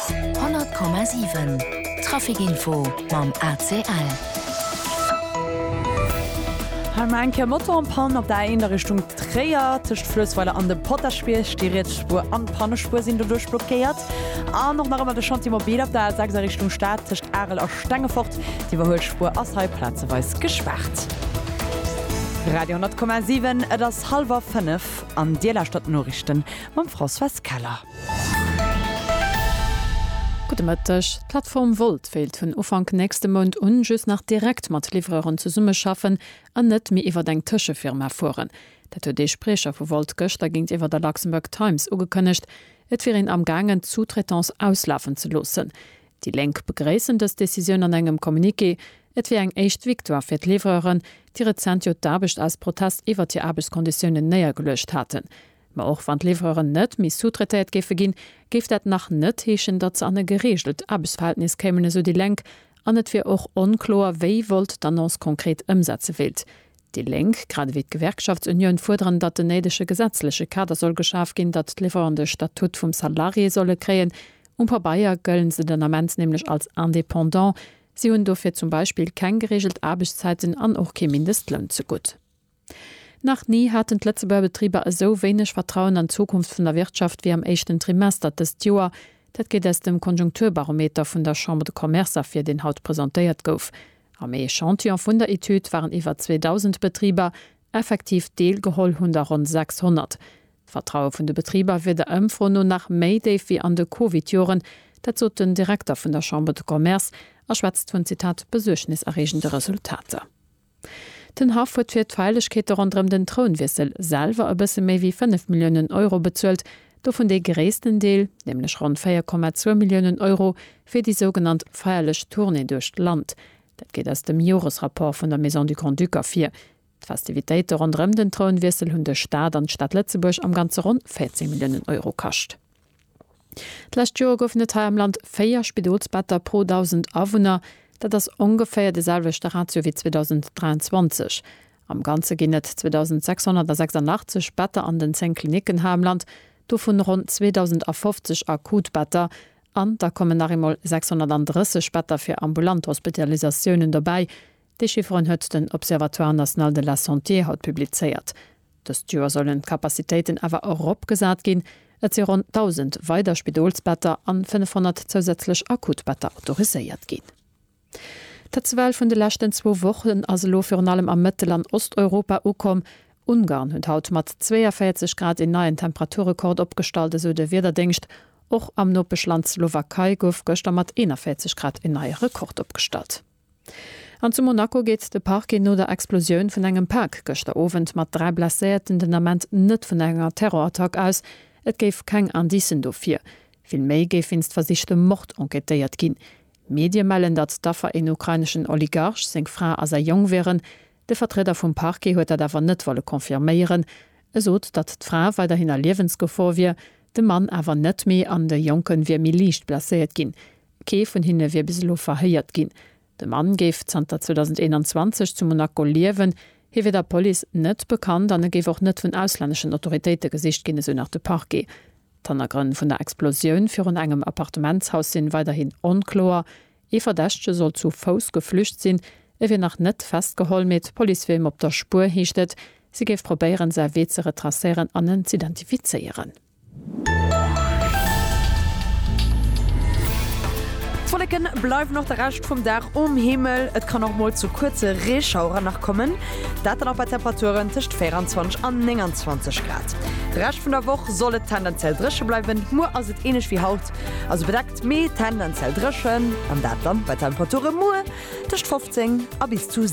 100,7 Trafic Info mam ACL. Hei mar eng Kéier Moto an Pann op der A1 a Richtung Tréier. Tëscht Fluessweiler an dem Potaschbierg, déi riets Spuer an d'Pannespuer sinn doduerch blockéiert. An och nach ëmmer de Chantier Mobil op der A6 a Richtung Stad tëscht Arel a Stengefort. D'Iwwerhuelspuer ass hei plazeweis gespaart. Radio 10,7 Et ass hallwer 5 an Dir lauschtert d'Noriichten mam Françoise Keller. Gudde Mëtteg. D'Plattform Wolt wéilt vun Ufank nächste Mount un just nach direkt mat Livreuren zesummeschaffen an net méi iwwert eng Tëschefirma fueren. Dat huet ee Spriecher vu Wolt gëschter géintiwwer der Luxembourg Times ugekënnegt. Et wier een amgaangen d'Sous-traitance auslafen ze loossen. Déi Lénk begréissen dës Decisioun an engem Communiqué. Et wier eng éischt Victoire fir d'Livreuren, déi rezent jo d'Aarbecht aus Protest iwwert hir Aarbechtskonditiounen néiergeluecht haten. Mä och wann d'Livreuren net méi sous-traitéiert géife ginn, géif dat nach net heeschen, datt se an e gereegelt Aarbechtsverhältnis kéimen, esou déi Lénk. An et wier och onkloer, wéi Volt d'Annonce konkret ëmsetze wéilt. Déi Lénk, grad ewéi d'Gewerkschaftsunioun, fuerderen, datt den néidege gesetzleche Kader soll geschaf ginn, datt d'Livreuren de Statut vum Salarié solle kréien. Um Pabeier gëllen se den Ament nämlech als Indépendant. Si hunn dofir zum Beispill keng gereegelt Aarbechtszäiten an och kee Mindestloun ze gutt. Nach ni haten d'Lëtzebuerger Betriber esou wéineg Vertrauen an d'Zukunft vun der Wirtschaft wéi am éischten Trimester dëst Joer. Dat geet aus dem Konjunkturbarometer vun der Chambre de Commerce ervir, deen haut presentéiert gouf. Am Echantillon vun der Etüd waren iwwer 2.000 Betriber. Effektiv deel geholl hunn der ronn 600. D'Vertraue vun de Betriber wier der Ëmfro no nach méi déif wéi an de Covid-Joren. Dat sot den Direkter vun der Chambre de Commerce a schwätzt vun, Zitat, besuergneserreegende Resultater. Den Haff huet fir d'Feierlechkeete ronderëm den Trounwiessel selwer e bësse méi wéi 5 Milliounen Euro bezuelt, dovun dee gréissten Deel, nämlech ronn 4,2 Milliounen Euro, fir déi sougenannt feierlech Tournée duerch d'Land. Dat geet aus dem Joresrapport vun der Maison du Grand-Duc ervir. D'Festivitéite ronderëm den Trounwiessel hunn de Staat an d'Stad Lëtzebuerg am Ganze ronn 14 Milliounen Euro kascht. D'lescht Joer goufen et hei am Land 4 Spidolsbetter pro 1.000 Awunner. Dat ass ongeféier de selwechte Ratio wéi 2023. Am Ganze ginn et 2.686 Better an den 10 Klinicken hei am Land, dovun ronn 2.050 akut Better. An da kommen nach eemol 630 Better fir ambulant Hospitalisatiounen dobäi. Déi Chifferen huet den Observatoire national de la santé haut publizéiert. Dëst Joer sollen d'Capacitéiten awer eropgesat ginn. Et si ronn 1.000 weider Spidolsbetter an 500 zousätzlech Akutbetter autoriséiert ginn. D'Hitzewell vun de leschten zwou Wochen ass elo virun allem a Mëttel an Osteuropa ukomm. Ungarn huet haut mat 42 Grad een neien Temperaturrekord opgestallt, esou de Wiederdéngscht. Och am Nopeschland Slowakei gouf gëschter mat 41 Grad een neie Rekord opgestallt. An zu Monaco geet de Parquet no der Explosioun vun engem Pak gëschter Owend mat dräi Blesséierten den Ament net vun enger Terrorattack aus. Et géif keng Indicen dofir. Vill méi géif wéinst versichtem Mord enquêtéiert ginn. Medie mellen, datt d'Affer een ukraineschen Oligarch, seng Fra a säi Jong wieren. De Vertrieder vum Parquet huet dat awer net wolle confirméieren. E sot, datt d'Fra weiderhin a Liewensgefor wier, de Mann awer net méi an de Jonke wier méi liicht blesséiert ginn. Kee vun hinne wier bis elo verhéiert ginn. De Mann géif zanter 2021 zu Monaco liewen. Hie wier der Police net bekannt an e géif och net vun auslänneschen Autoritéite gesicht ginn, esou nach de Parquet. D'Hannergrënn vun der Explosioun virun engem Appartementshaus sinn weiderhin onkloer. Ee Verdächtege soll zu Fouss geflücht sinn. E wier nach net festgeholl, mee d'Police wier him op der Spuer, heescht et. Si géif probéieren, säi Wee ze retracéieren an en z'identifizéieren. D'Wolleken bleiwen och de Rescht vum Dag um Himmel, et kann och mol zu kuerze Reeschaueren nach kommen, dat dann och bei Temperaturen tëscht 24 an 29 Grad. De Rescht vun der Woch soll et tendenziell dréche bleiwen, muer ass et ähnlech wéi haut, also bedeckt mee tendenziell dréchen an dat dann bei Temperature muer tëscht 15 a bis zu